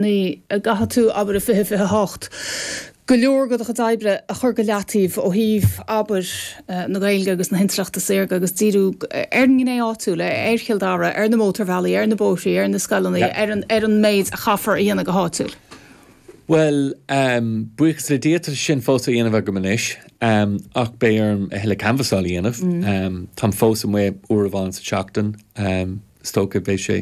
Nach gcaithfidh tú, abair, i 20, 28, go leor de do chuid oibre a chur go leataobh ó thaobh, abair, na Gaeilge agus na hintleachta saorga agus díriú ar an ngné áitiúil, ar Chill Dara, ar na mótarbhealaí, ar na bóithrí, ar na scoileanna, ar an méid a chaithfear a dhéanamh go háitiúil? Bhuel, buíochas le Dia tá sé sin fós á dhéanamh agam anois ach beidh orm a thuilleadh canbhasáil a dhéanamh. Táim fós amuigh uair amháin sa tseachtain. is dócha beidh sé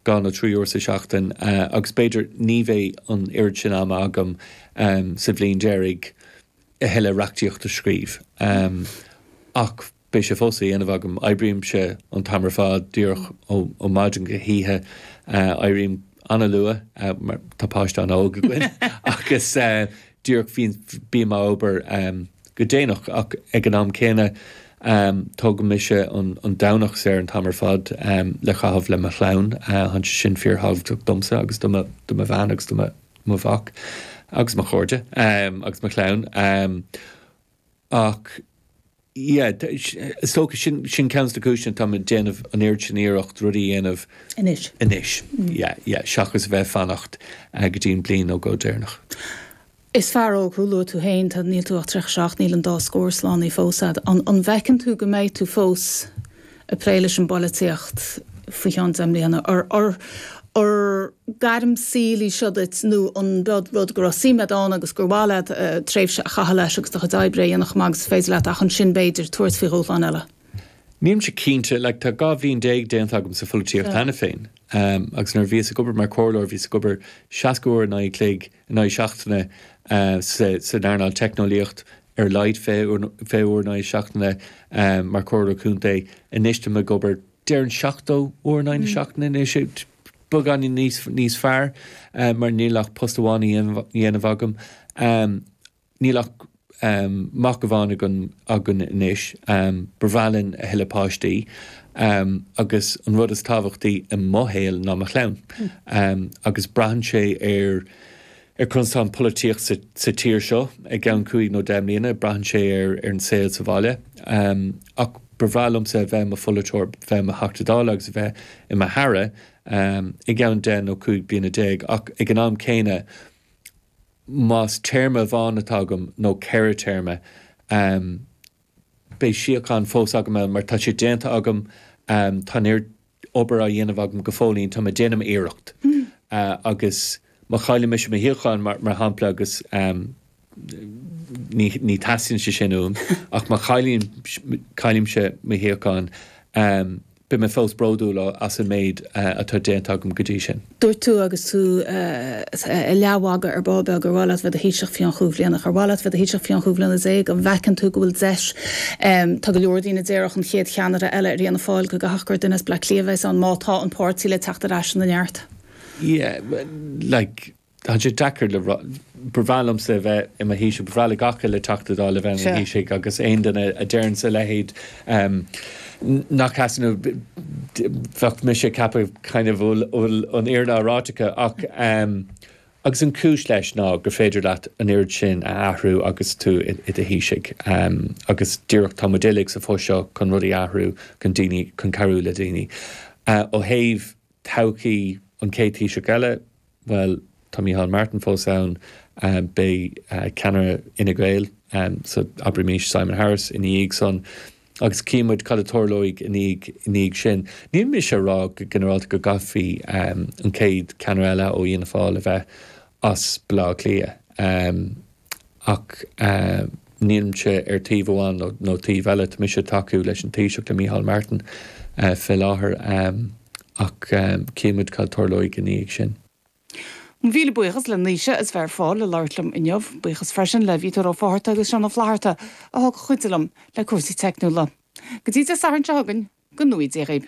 dhá nó trí uair sa seachtain agus b'fhéidir ní bheidh an oiread sin ama agam sa bhliain deiridh a thuilleadh reachtaíocht a scríobh ach beidh sé fós á dhéanamh agam. Oibrímse an t-am ar fad díreach ó maidin go hoíche. Éirím. an-luath, tá páiste an-óg againn agus díreach bím ag obair go déanach ach ag an am céanna tugann mise an Domhnach saor an t-am ar fad le chaitheamh le mo chlann, tá sé sin fíor thábhachtach domsa agus do mo bhean agus do mo mhac agus mo chairde agus mo chlann. Ach yeah, is dócha sin, sin ceann de na cúiseanna atá mé ag déanamh an oiread sin iarracht rudaí a dhéanamh anois, anois, yeah, yeah, seachas a bheith ag fanacht go dtí an bliain nó dhó deireanach. Is fear óg thú, luaigh tú féin, tá, níl tú ach 37, níl an dá scór slánaithe fós a'd. An, an bhfeiceann tú go mbeidh tú fós, ag plé leis an bpolaitíocht faoi cheann deich mbliana, or gairm saoil í seo duit nó an rud go raibh suim a'd ann agus gur mhaith leat tréimhse a chaitheamh leis agus do chuid oibre a dhéanamh chomh maith agus is féidir leat ach ansin b'fhéidir tabhairt faoi dhúshlán eile? Nílimse cinnte, like tá dhá bhliain déag déanta agam sa pholaitíocht cheana féin agus nuair a bhíos ag obair mar chomhairleoir bhíos ag obair seasca uair an chloig in aghaidh na seachtaine san earnáil teicneolaíocht ar a laghad fiche uair in aghaidh na seachtaine mar chomhairleoir contae anois tá mé ag obair déarfainn seachtó uair in aghaidh na seachtaine anois beagáinín níos níos fearr mar níl ach post amháin á dhéanamh agam Níl ach mac amháin againn anois. Ba bhreá linn a thuilleadh páistí agus an rud is tábhachtaí i mo shaol ná mo chlann. Agus braitheann sé ar conas atá an pholaitíocht sa tír seo i gceann cúig nó deich mbliana, braitheann sé ar an saol sa bhaile. Ach ba bhreá liomsa a bheith i mo pholaiteoir, a bheith i mo Theachta Dála agus a bheith i m'Aire i gceann deich nó cúig bliana déag. Ach ag an am céanna. más téarma amháin atá agam nó ceithre téarma, beidh síocháin fós agam ann mar tá sé déanta agam, tá an oiread obair á dhéanamh agam go fóillín, tá mé ag déanamh m'iarracht. Agus má chailleann mise mo shuíochán, mar shampla, agus ní theastaíonn sé sin uaim, ach má chaillimse mo shuíochán, Beidh mé fós bródúil as an méid atá déanta agam go dtí sin. Dúirt tú agus tú ag leathmhagadh ar ball beag gur mhaith leat bheith i do Thaoiseach fiú an cheann bliain. Ar mhaith leat bheith i do Thaoiseach fiú an cheann bliana déag? An bhfeiceann tú go bhfuil deis, tá go leor daoine ag déarfadh an chéad cheannaire eile ar Fhianna Fáil, go gcaithfeadh gur duine as Bleá Cliath a bheidh ann má tá an páirtí le teacht ar ais ina neart? Yeah, like. tá sé deacair le rá. Ba bhreá liomsa a bheith i mo Thaoiseach, ba bhreá le gach uile Teachta Dáil a bheith ina Thaoiseach agus aon duine a deireanns a leithéid nach ea, so bheadh mise ag ceapadh nach bhfuil an fhírinne á ráit acu ach, agus an chúis leis ná gur féidir leat an oiread sin a athrú agus tú i do Thaoiseach agus díreach, tá muid uilig sa phost seo chun rudaí a athrú, chun daoine, chun cabhrú le daoine. Ó thaobh todhchaí an chéad Taoiseach eile, Bhuel, tá Micheál Martin fós ann, beidh ceannaire Fhine Gael, so abraimís Simon Harris, ina dhiaidh san agus chífidh muid cad a tarlóidh i ndiaidh sin. Níl mise ag rá go ginearálta go gcaithfidh an chéad cheannaire eile ó Fhianna Fáil a bheith as Baile Átha Cliath. ach nílimse ar taobh amháin nó taobh eile. Tá mise ag tacú leis an Taoiseach, le Micheál Martin, fé láthair, ach cífidh muid cad tarlóidh i ndiaidh sin. Mo mhíle buíochas le Naoise as bheith ar fáil le labhairt liom inniu. Buíochas freisin le Victor Ó Fátharta agus Seán Ó Flatharta a thug cuidiú liom le cúrsaí teicniúla. Go dtí Dé Sathairn seo chugainn, go n-éirí libh.